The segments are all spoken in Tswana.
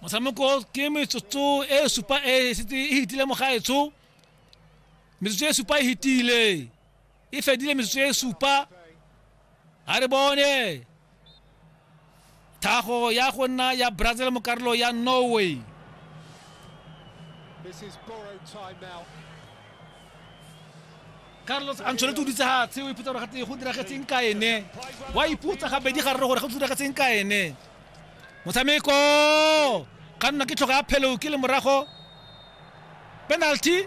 motshameko ke metsotso e supa e setse e hitile mo gaetsho metsotso e supa e hitile e fedile metsotso e supa ga re bone thago ya go nna ya brazil mo karolo ya norway carlos ancelotti o dutse gatshe o ipotsa gore gate go diragetseng ka ene wa ipotsa gabedi ga rre gore go diragetseng ka ene motshameko ka nna ke tlhoka ya phelo ke le morago penalty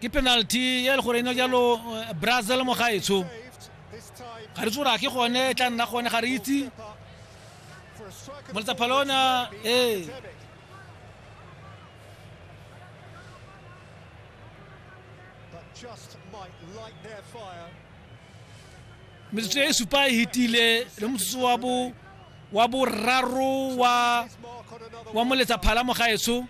ke penalty ya le gore eno jalo eh, brazil mo gaetsho ga re tsora ke gone e tla nna gone ga re itse moletsapha lona ee metsotso e supa e hitile le motsotso wa bo wa boraro wa wa moletsa phala mo gaetsho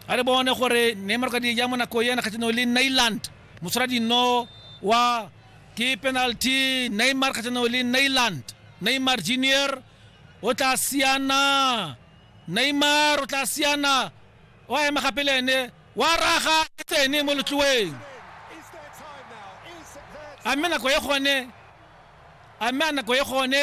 a re bone gore neymar ka di ja mo nako ena kgatlhanong le nailand moshwara dino wa ke penalty neymar kgatlhanong le nailand neymar junior o tla siana neymar o tla siana o a ema gape le ene wa raga e tsene mo letloeng a mme nako e gone a mme a nako e gone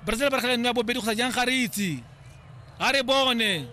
Brazil ba kgela nngwe ya bobedi go sa jang ga re itse ga re bone